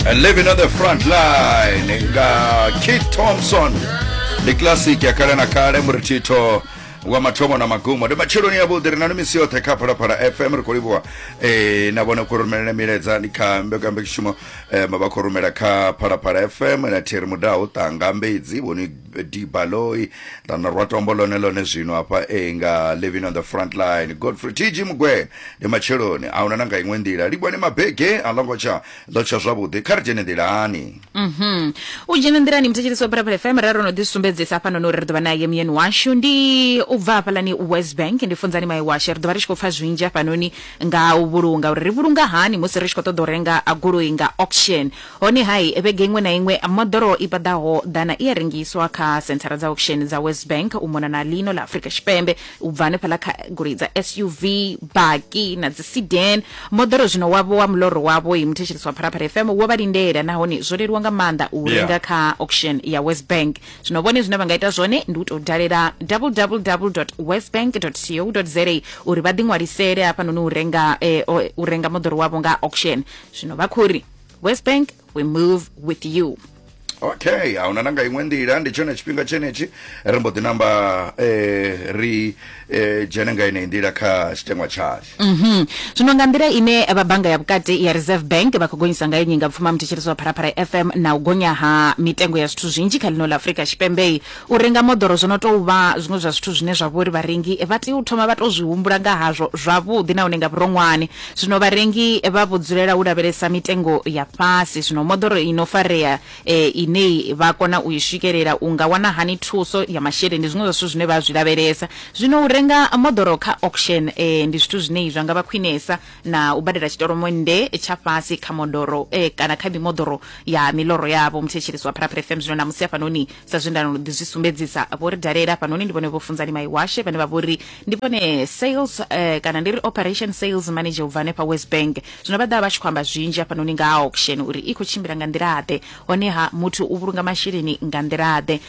and living on the front line nga kit thompson ndi classic ya kale na kale murithitho wa mathomo na magumo ndi matsheloni yavhuḓi ri na misi yoṱhe kha phalaphala fm ri khou livhuwa eh, na vhone khou rumelele milaedza ni kha mbekambekishumo eh, vha khou rumela kha phalaphala fm na thiri mudaho ṱanga mbedzi vhoni dibaloyi ra na rwa tombo lone lone zwino hafha e nga living on the front line godfrey tg mugwena ndi matsheloni a huna na nga iṅwe nḓila livhone mabege a longo tsha ḽo tsha zwavhuḓi kha ri dzhene nḓilani Mhm. u dzhena nḓilani muthetshelesi wa phalaphala fm ra ro no ḓi sumbedzisa hafhanoni uri ri ḓo vha naye muyeni washu ndi u bva hafhalani west bank ndi funzani maye washe ri ḓo vha ri tshi khou pfa zwinzhi hafhanoni nga u vhulunga uri ri vhulunga hani musi ri tshi khou ṱoḓa u renga a goloi nga auction Honeha, vhege iṅwe na iṅwe moḓoro i paḓaho ḓana i a rengiswa kha senthara dza auction dza WesBank u mona na ḽino ḽa Afrika Tshipembe. U bva hanefhaḽa kha goloi dza SUV, baki na dzi sedan, moḓoro zwino wavho wa muḽoro wavho. Muthetshelesi wa Phalaphala FM wo vha lindela nahone zwo leluwa nga maanḓa u u renga kha auction ya WesBank. Zwino vhone zwine vha nga ita zwone ndi u tou dalela www.wesbank.co.za uri vha ḓiṅwalisele hafhanoni u renga u renga moḓoro wavho nga auction. Zwino vha khou ri. west bank we move with you okay ahuna nanga iṅwe nḓila ndi tshone tshifhinga tshenetshi ri mbo ḓi namba eh, ri eh, dzhene nga ineyi nḓila kha tshitengwa tshashu Mhm. zwino nga nḓila ine vha bannga ya vhukati ya reserve bank vha khou gonyisa ngayo nyingapfuma muthetshelesi wa pharapara fm na u gonya ha mitengo ya zwithu zwinzhi kha ḽino ḽa afurika tshipembei U renga moḓoro zwo no tou vha zwiṅwe zwa zwithu zwine zwa vha uri vharengi vha tea u thoma vha tou zwi humbula nga hazwo zwavhuḓi nahone nga vhuronwane. Zwino vharengi vha vho dzulela u lavhelesa mitengo ya fhasi. Zwino moḓoro i no farea ine vha kona u i swikelela, u nga wana hani thuso ya masheleni, ndi zwiṅwe zwa zwithu zwine vha zwi lavhelesa. Zwino u renga moḓoro kha auction ndi zwithu zwine zwa nga vha khwinesa. na u badela tshitolomonnde tsha fhasi kha modoro eh, kana kha mimoḓoro ya miloro yavho muthetshelisi wa pharaphere fm zwino na musi hafhanoni sa zwe ndano ḓi zwi sumbedzisa vho ri dalela hafhanoni ndi vhone vho funzani maiwashe vhane vha vho ri ndi vhone sales eh, kana ndi ri operation sales manager u bva hanefha west bank zwino vha ḓa vha tshi khou amba zwinzhi hafhanoni nga ha auction uri i khou tshimbila nga nḓila-ḓe honeha muthu u vhulunga masheleni nga nḓila-ḓe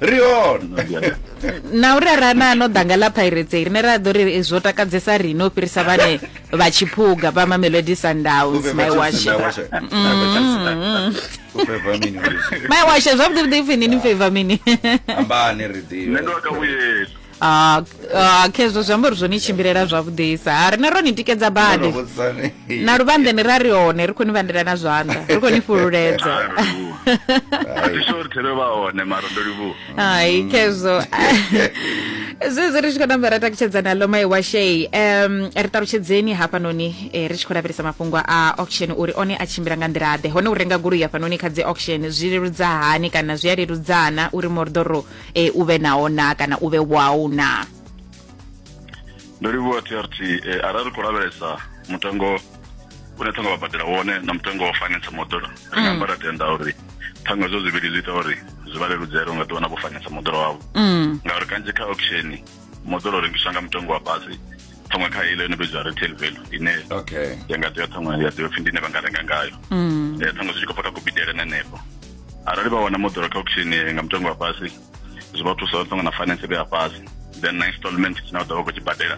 ri hone na uri ara na no danga ḽa pirates rine ra ḓo ri zwo takadzesa rine u fhirisa vhane vha tshiphuga vha mamelodi sundowns my wash mm. my wash zwavhuḓi vhuḓi ipfhi nini favor mini ambani ri ḓivhe Ah, ah, khezwo zwi amba uri zwo ni tshimbilela zwavhuḓisa ha rine ro ni tikedza badi na luvhanḓeni ra ri hone ri khou ni vhandela na zwanḓa ri khou ni fhululedza hai khezwo zwezwi ri tshi khou namba ra takutshedza nalo mai wa shei um ri ṱalutshedzeni hafhanoni eh, ri tshi khou lavhelesa mafhungo a auction uri one a tshimbila nga nḓila ḓe hone u renga goloi hafhanoni kha dzi auction zwi leludza hani kana zwi a leludzana uri moḓoro e, u vhe naho na kana u vhe wau na ndo livhuwa trt e, arali ri khou lavhelesa mutengo une ṱhanga vha badela wone na mutengo wa finance moḓoro ri nga mm. amba ra tenda uri ṱhanga zwo zwivhili zwi ita uri zwi vha leludzele unga ḓiwana vho finance moḓoro wavho mm. ngauri kanzhi kha auction moḓoro rengiswa nga mutengo wa fhasi ṱhaṅwe kha ile ine vhidzwa retail value ine okay ya nga tea ṱhaṅwe ya tea pfhi ndi ine vha nga renga ngayo mm. eh, ṱhaṅwe zwi tshi khou bva kha kubidele na nepo arali vha wana moḓoro kha auction nga mutengo wa fhasi zwi vha thusa ṱhaṅwe na finance vhe ya fhasi then na installment tshine vha ḓo vha khou tshi badela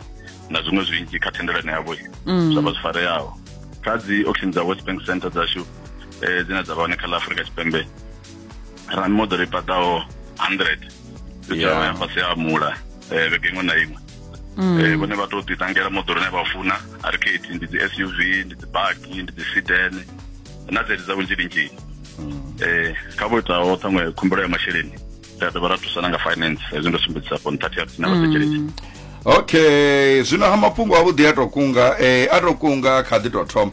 na zwiṅwe zwinzhi kha thendelano yavho mm. zwa vha zwi fareaho kha dzi auction dza west bank center dzashu um dzine dza vha hone kha ḽa afurika tshipembe ra mimoḓoro i paḓaho 100 fhedzaho ya fhasi ha mula um vhege iṅwe na iṅwe um vhone vha tou ḓiṱangela moḓoro ine vha funa arcade ndi dzi s u v ndi dzi baki ndi dzi siden na dzedzi dza vhunzhi linzhini um kha vho itaho ṱhaṅwe khumbelo ya masheleni ri a dovha ra thusana nga finance hezwi ndo sumbedzisa fo nṱhathi ya na vhathetshelesi okay zwino ha mafhungo avhuḓi a to kunga eh, a to kunga kha ḓi to thoma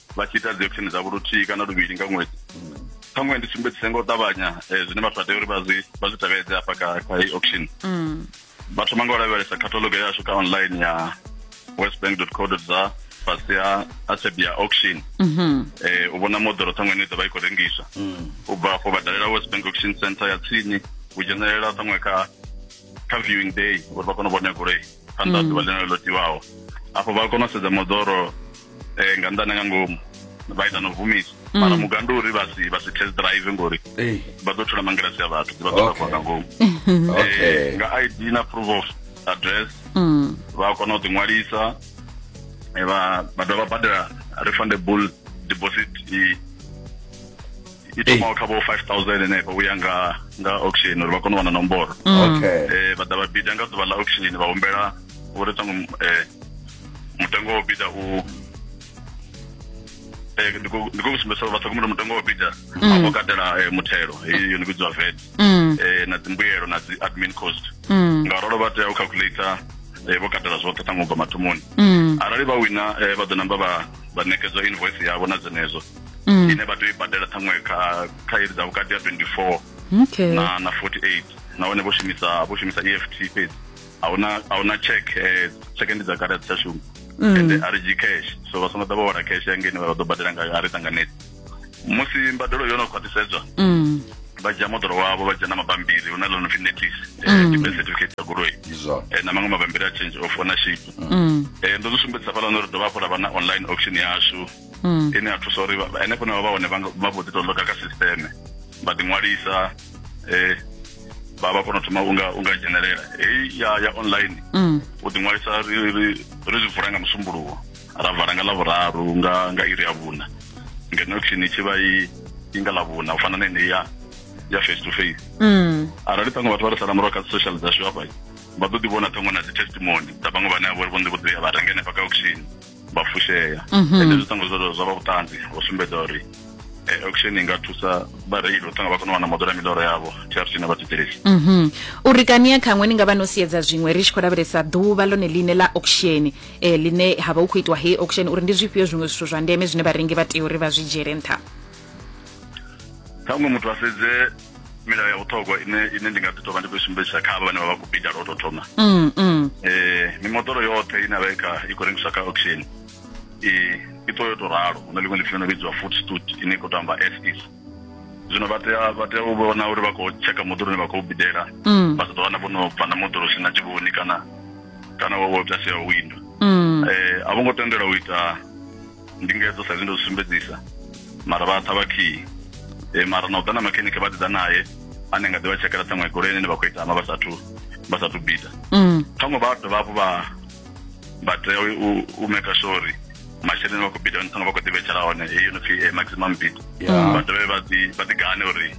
vha tshi ita dzi action dzavho luthihi kana luvhili nga ṅwedzi ṱhaṅwe ndi sumbedzise nga u ṱavhanya eh, zwine vhathu vha tea uri vha zwi vha zwi tevhedze hafha kha kha heyi auction mm. vha thoma nga u lavhelesa catalogue yashu kha online ya westbank co za fhasi ha asebia auction mm-hmm. eh, u vhona moḓoro ṱhaṅwe ine i ḓo vha i khou rengiswa mm. u bva afho vha dalela westbank auction center ya tsini u dzhenelela ṱhaṅwe kha kha viewing day uri vha kone u vhona goloi phanḓa mm. ḓuvha ḽine ḽo tiwaho afho vha kona u sedza moḓoro um nga nḓane nga ngomu vha ita no vumisa mm. mara mugandu uri vha si vha si test drive ngori vha ḓo thula mangilasi ya vhathu vha ḓo takuwa nga ngomu eh, nga id na proof of address mm. vha kona u ḓiṅwalisa eh, vha dovha badela refundable deposit i i thomaho kha vho 5000 henefho uya nga nga auction uri vha kone u wana nomboro mm. okay eh vha ḓa vha bida nga ḓuvha ḽa auction vha humbela uri ṱangu eh mutengo wo bida u eh ndi khou sumbedza uri vha ṱhogomela mutengo wo bida mm. afho katela eh, muthelo heyi yo ni vhidziwa vet mm. eh na dzimbuyelo na dzi admin cost nga rolo vha tea u calculator eh, vho katela zwoṱhe ṱangu bva mathomoni arali vha wina vha ḓo namba vha vha ṋekedzwa invoice yavho na dzenedzo mm. ine vha tea u i badela ṱhaṅwe kha kha iri dza vhukati ya 24 okay. na na 48 nahone vho shumisa vho shumisa EFT fhedzi ahuna ahuna check eh, check ndi dza kale dzi tsha shuma mm. ende a ri cash so vha songo ḓa vha wala cash ya ngeni vha ḓo badela ngayo a ri ṱanganedzi musi mbadelo yo no khwaṱhisedzwa mm. vha dzhia moḓoro wavho vha dzhia na mabambiri hu na ḽo no pfi notice eh, mm. debit certificate ya goloi eh, na maṅwe mabambiri a change of ownership mm. eh, ndo zwi sumbedzisa fhaḽa no ri dovha hafhu ra vha na online auction yashu mm. ine ya thusa uri henefho na vha hone vha vho ḓi tou loka kha sisteme vha ḓi ṅwalisa eh vha vha kona u thoma unga unga dzhenelela heyi ya ya online mm. u ḓi ṅwalisa ri ri ri zwi vula nga musumbuluwo ra vala nga ḽa vhuraru nga nga iri ya vhuna ngeno khini tshi vha i i nga ḽa vhuna u fana na ine ya ya face to face mm. arali ṱhaṅwe vhathu vha ri sala murahu kha social dzashu hafha vha ḓo ḓi vhona ṱhaṅwe na dzi testimony dza vhaṅwe vhane a vhori vho ḓi vho ḓi ya vha renga henefha kha auction vha fushea mhm. ende zwi ṱangwa zwo zwa vha vhuṱanzi vho sumbedza uri eh, auction i nga thusa vhareili u ṱanga vha kona u wana moḓoro ya miḽoro yavho trc na vhathetshelesi mhm. uri kani ya khaṅwe ni nga vha no siedza zwiṅwe ri tshi khou lavhelesa ḓuvha ḽone ḽine ḽa auction um ḽine ha vha hu khou itiwa hei auction uri ndi zwifhio zwiṅwe zwithu zwa ndeme zwine vharengi vha tea uri vha zwi dzhiele nṱha ṱhaṅwe muthu a sedze milayo ya vhuṱhogwa ine ine ndi nga ḓi tovha ndi khou sumbedzisa kha vhane vha vha khou bida lwo tou thoma mm, mm. eh, mimoḓoro yoṱhe ine vha kha i khou rengiswa kha auction i i ṱo yo tou ralo hu na ḽiṅwe ḽipfi no vhidziwa food stud ine i khou tou amba ss zwino vha tea vha tea u vhona uri vha khou tsheka moḓoro une vha khou bidela mm. vha sa ḓo wana vho no bva na moḓoro si na tshivhoni kana kana wo wo ita sia windo um a vho ngo tendelwa u ita ndingedzo sa ndo sumbedzisa mara vha tha vhakhiyi e, eh, mara na u ḓa na makhenike vha ḓi ḓa naye ane nga ḓi vha tshekela ṱhaṅwe goloi ine vha khou itama vha sathu vha sathu bida mm. ṱhaṅwe vha dovha hafhu vha vha tea u maker sure uri masheleni vha khou bida ṱhaṅwe vha khou ḓi vhetshela hone heyi yo no pfi eh, maximum bid vha dovhe vha ḓi gane uri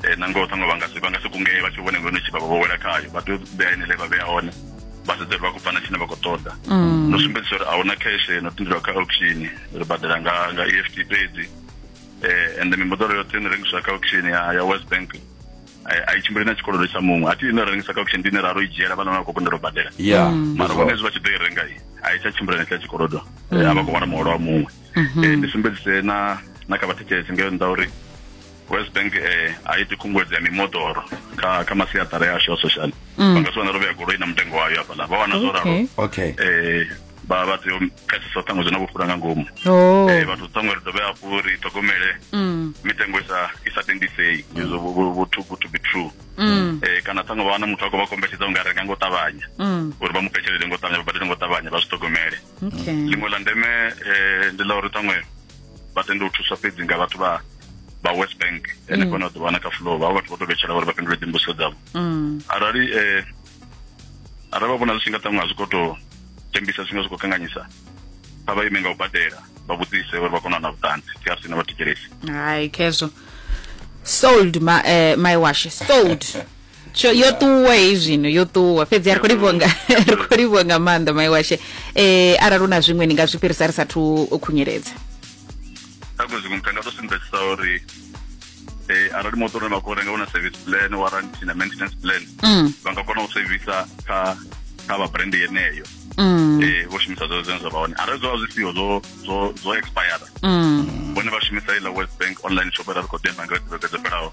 eh, nangoho ṱhaṅwe vha nga si kungee vha tshi vhone ngono tshi vha vha vho wela khayo vha tea u ḓea ine le vha vhea hone vhaṱoḓeli vha khou bva na tshine vha khou ṱoḓa mm. no sumbedzisa uri ahuna cash no tendelwa kha auction ri badela nga nga EFT fhedzi eh and mimoḓoro yoṱhe ine rengiswa kha auction ya ya West Bank eh, a i tshimbili na tshikolodo tsha muṅwe athi ine rengisa kha auction ndine ra ro i dzhiela vhana vha khou kundelwa badela yeah mm. mara vhone zwi vha tshi ḓo i renga i a i tsha tshimbila na tsha tshikolodo eh, mm. a vha khou wana muholo wa muṅwe mm-hmm. eh, ndi sumbedzise na na kha vhathetshelesi ngeo nda uri west bank eh, a iti khunguwedzo ya mimoḓoro kha kha masiaṱara ya ashu a social mm. vha nga si wane ro vhea goloi na mutengo wayo hafhaḽa vha wana zwo ralo okay eh, vha vha tea u pfesesa ṱhaṅwe zwi na vhufhura nga ngomu oh. eh, vhathu ṱhaṅwe ri dovhe hafhu ri ṱhogomele mm. mitengo i sa i sa tendisei izwo vho too good to be true mm. eh, kana ṱhaṅwe vha wana muthu a khou vha kombetshedza u nga renga ngo ṱavhanya uri vha mu petshelele ngo ṱavhanya vha badele ngo ṱavhanya vha zwi ṱhogomele liṅwe ḽa ndeme ndi ḽa uri ṱhaṅwe vha tende u thuswa fhedzi nga vhathu vha vha west bank ene mm. kone a ḓo wana kha fulo vha vhathu vho to vhetshela uri vha fhindule dzimbuso dzavho mm. arali eh, arali vha vhona zwi tshi nga ṱaṅwa zwi khou to tembisa zwi nga zwi khou kanganyisa vha vha ime nga u badela vha vhudzise uri vha kone u na vhuṱanzi thi a sina vha thetshelesi hai khezwo sold my, uh, eh, my wash sold tsho yo ṱuwa hei zwino yo ṱuwa fhedzi a ri khou livhuwa nga ri khou livhuwa nga maanḓa mai washe eh arali una zwiṅwe ni nga zwi fhirisa ri sathu u khunyeledza kha kwe zwiṅwe mutanga to sumbedzisa uri eh arali motor une vha khou renga una service plan warranty na maintenance plan mm vha nga kona u sevisa kha kha vha brand yeneyo mm eh vho shumisa zwo zwine zwa vha hone arali zwo vha zwi siho zwo zwo zwo expire mm vhone vha shumisa iḽa west bank online shop ra ri khou ḓi amba nga dzi vhege dzo fhelaho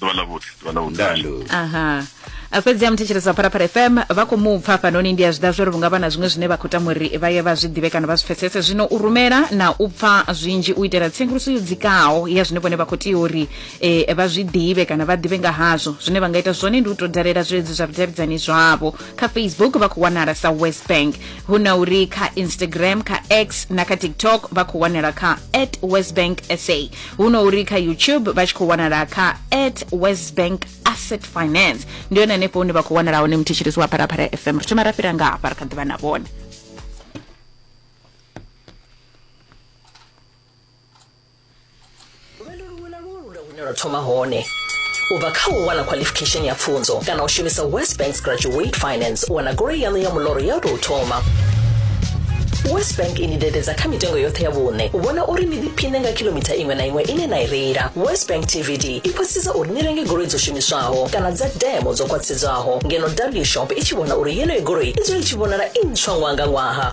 ḓuvha ḽa vhuḓi ḓuvha ḽa vhuḓi aha fhedzi ya muthetshelesi wa pharapara fm vha khou mu pfa hafhanoni ndi a zwi ḓa zwo ri vhunga vha na zwiṅwe zwine vha khou tama uri vha ye vha zwi ḓivhe kana vha zwi pfesese zwino u rumela na u pfa zwinzhi u itela tsenguluso yo dzikaho ya zwine vhone vha khou tea uri um vha zwi ḓivhe kana vha ḓivhe nga hazwo zwine vha nga ita zwone ndi u tou dalela zwileludzi zwa vhudavhidzani zwavho kha facebook vha khou wanala sa west bank hu na uri kha instagram kha x na kha tiktok vha khou wanala kha at west bank sa huno uri kha youtube vha tshi khou wanala kha at west bank asset finance ndi yone hanefho hune vha khou wanala hone muthetshelesi wa pharapara fm ri thoma ra fhira nga hafha ri kha ḓivha na vhone lwendo luṅwe na luṅwe lu na hune lwa thoma hone U bva kha u wana khwalifikhesheni ya pfunzo kana u shumisa West Bank's Graduate Finance u wana goloi yaṋu ya muḽoro ya u tou thoma, West Bank i ni dededza kha mitengo yoṱhe ya vhuṋe u vhona uri ni ḓiphiṋe nga khilomitha iṅwe na iṅwe ine na i reila. West Bank TVD i khwaṱhisedza uri ni renge goloi dzo shumiswaho kana dza demo dzo khwaṱhisedzwaho, ngeno W-Shop i tshi vhona uri yeneyo goloi i dzule i tshi vhonala i ntswa ṅwaha nga ṅwaha.